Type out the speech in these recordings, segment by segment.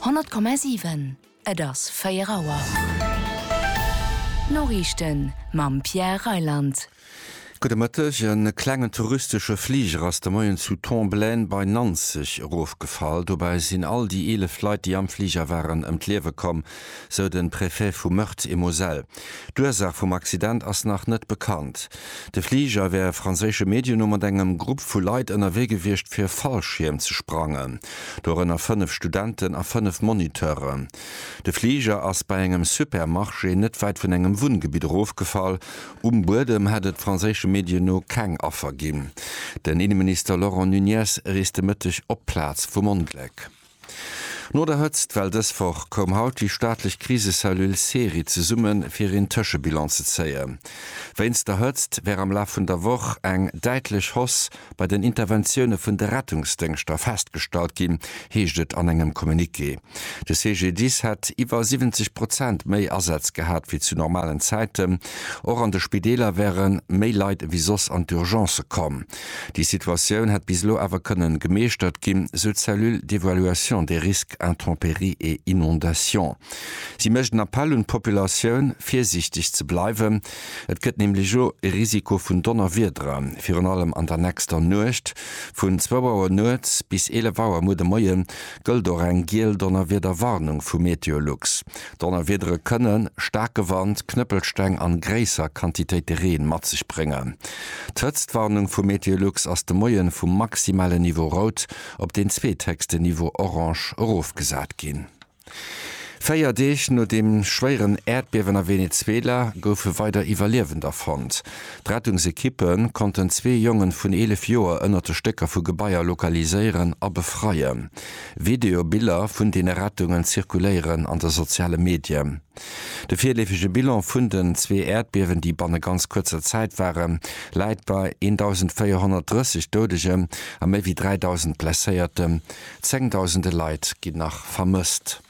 100,7 Et ass 4 Auer. D'Noriichten mam Pierre Reyland. Gudde Mëtteg. E klengen touristesche Fliger ass de Moien zu Tomblaine bei Nanzeg erofgefall. Dobäi sinn all déi 11 Leit, déi am Fliger waren, ëm d'Liewe komm. sou de Préfet vu Meurthe-et-Moselle. D'Ursaach vum Accident ass nach net bekannt. De Fliger wär franséische Medien no mat engem Grupp vu Leit ënnerwee gewiescht fir e Fallschierm ze sprangen, dorënner fënnef Studenten a fënnef Moniteuren. De Fliger ass bei engem Supermarché net wäit vun engem Wunngebitt erofgefall. Um Buedem hätt et franséische Medien no keng Affer ginn. Den Inneminister Laurent Nunez reest de Mëtteg op d'Plaz vum Ongléck. No der Hëtzt, well dës Woch koum haut déi staatlech Krisecellule SERI zesummen, fir een Tëschebilan ze zéien. Wéinst der Hëtzt wär am Laf vun der Woch eng däitlech Hausse bei den Interventioune vun de Rettungsdéngschter festgestallt ginn, heescht et an engem Communiqué. De CGDIS hätt iwwer 70 Prozent méi Asätz gehat wéi zu normalen Zäiten. Och an de Spideeler wäre méi Leit ewéi soss an d'Urgence komm. Déi Situatioun hätt bis elo awer kënnen gemeeschtert ginn, sou d'Cellule d'évaluation des risques intempéries et inondations. Si mécht en Appell un d'Populatioun, virsiichteg ze bleiwen. Et gëtt nämlech elo e Risiko vun Donnerwiedere virun allem an der nächster Nuecht. Vun zwou Auer nuets bis eelef Auer muer de Moie gëllt och eng giel Donnerwiederwarnung vu Meteolux. Donnerwiedere kënne staarke Wand, Knëppelsteng an gréisser Quantitéite Reen mat sech bréngen. D'Hëtztwarnung vu Meteolux ass de Moien vum maximalen Niveau Rout op deen zweethéchsten Niveau Orange erofgesat ginn. Véier Deeg no dem schwéieren Äerdbiewen a Venezuela goufe weider Iwwerliewender fonnt. D'Rettungsekippe konnten zwee Jongen vun 11 Joer ënnert de Stécker vu Gebaier lokaliséieren a befreien. Videobiller vun deene Rettungen zirkuléieren an de soziale Medien. De virleefege Bilan vun den zwee Äerdbiewen, déi banne ganz kuerzer Zäit waren, läit bei 1.430 Doudegen a méi wéi 3.000 Blesséierten. Zéngdausende Leit ginn nach vermësst.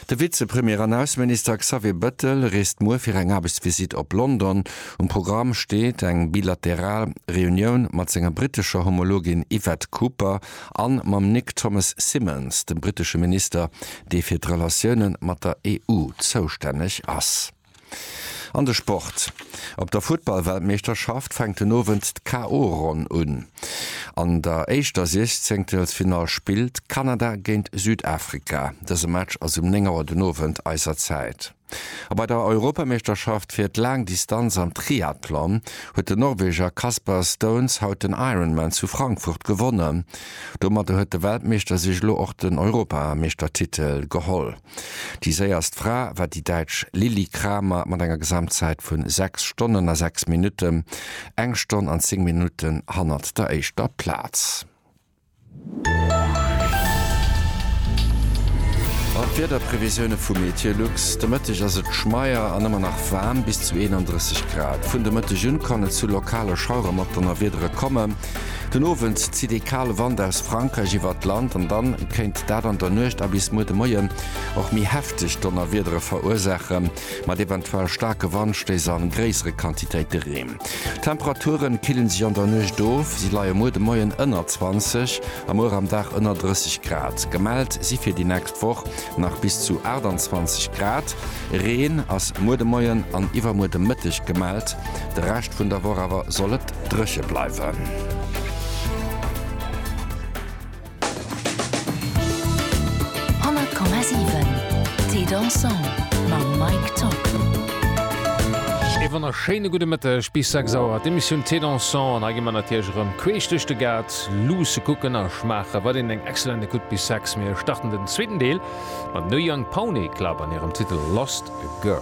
De Vizepremier an Ausseminister Xavier Bettel reest muer fir eng Aarbechtsvisitt op London. Um Programm steet eng bilateral Reunioun mat senger brittescher Homologin Yvette Cooper a mam Nick Thomas Symonds, dem brittesche Minister, dee fir d'Relatiounen mat der EU zoustänneg ass. An de Sport, Op der Futtballweltmeeschterschaft fänkt den Owend d'KO-Ronn un. An der éischter Siechzéngtelsfinall spillt Kanada géint Südafrika. Dëse Match ass um 9 Auer den Owend eiser Zäit. A bei der Europameeschterschaft fir d'Laangdistanz am Triathlon huet den Norweger Kasper Staunes haut den Ironman zu Frankfurt gewonnen. Domadder huet de Weltmeeschter sech elo och den Europameeschtertitel geholl. Déi séierst Fra war déi Däitsch Lilli Kramer mat enger Gesamtzäit vu 6 Stonnen a 6 Minutten, eng Stonn an 10 Minutten hannert der éischter Plaz. An d'Wiederprevisioune vu Meteolux, De Mëtteg ass et schmeier an ëmmer nach waarm, bis zu 31 Grad. Vun de Mëtteg un kann et zu lokale Schauerer mat Donnerwiedere kommen. Den Owend zitt ee kale Wand aus Frankräich iwwert d'Land an dann kéint dat an der Nuecht a bis muer de Moien och méi hefteg Donnerwiedere verursaache mat eventuell staarke Wandstéiss a gréissere Quantitéite Reen. D'Temperaturen killen sech an der Nuecht of, si leie muer de Moien ënner 20 a muer am Dag ënner 30 Grad gemellt si fir déi nächst. D'Woch nach bis zu 28 Grad. Reen ass muer de Moien an iwwermuer de Mëtteg gemellt. De Rescht vun der Woch awer soll et dréche bleiwen. E wonnerschéine gudde Mëtteg bis 6 Auer. D'Emissioun Thé Dansant an hei gi mer natierlech erëm queesch duerch de Gaart. Sex luusse kucken a schmaache wat een eng excellent It could be sex. Mir starten den zweeten Deel mam No Young Pony Club an hirem Titel Lost Girl.